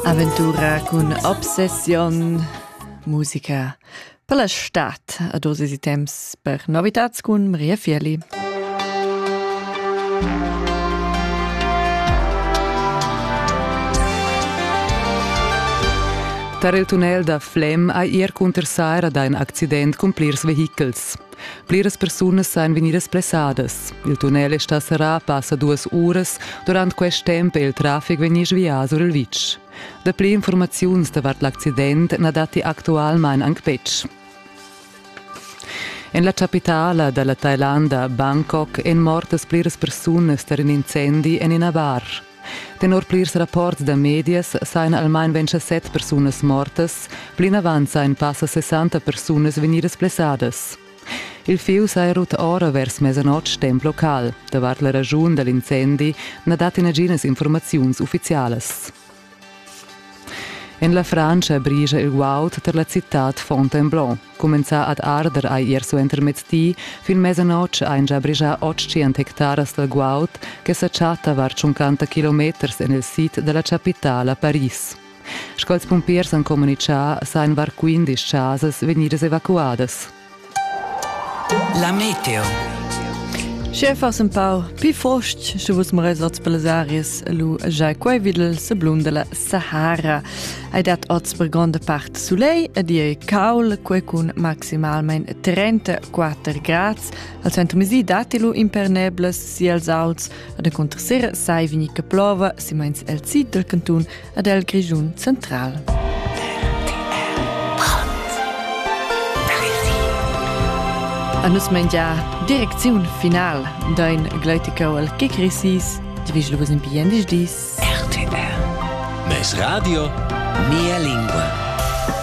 Aventura cun obsessiun, musica per la stad a dosi si temps per novitats cun Maria Fieli. Tar il tunnel da Flem ha ir cunter saira da in accident cun plirs vehichels. Pliras persunas ein vegnidas blessadas. Il tunnel è stà serrà passa duas uras. Durant quest temp è il traffic vegnì svià sur il vitg. Dapli informaziuns davart l'accident na datti actualmain anc betg. En la chapitala da la Thailanda, Bangkok, èn mortas pliras persunas tar in incendi en ina bar. Tenor plirs rapports da medias sajan almain ventg set persunas mortas, plinavant sajan passa 60 persunas vegnidas blessadas. Il fieu saja rut ora vers mesanotg temp local. Davart la raschun da l'incendi na datti naginas informaziuns uffizialas. En la Francia brigia il guaud tar la citad Fontainebleau. Cumenzà ad arder hai er suentermezzdi, fin mesanotg ein gia brigia otg hectaras da guaud che sa chatta var 50 kilometers en il sid dalla chapitala Paris. Sco ils pumpiers han communitgà, sain var 15 chasas vegnidas evacuadas. La meteo. Schefas un pau pi frost, sche vus merezats per les aries, lu giai quei videl se blum della Sahara. Ei dat oz per gronda part sulei ed ei caul quei cun maximalmein 34 grads. Al center mesi datti lu impernebles siels auts ed encunter sera sai vegnir che plova simeins el sid dal cantun ed el Grischun central. A nus mengia direcziun final dain gleuticau al che crisis, divigl vos in bien dis dis. RTR. Mes radio, mia lingua.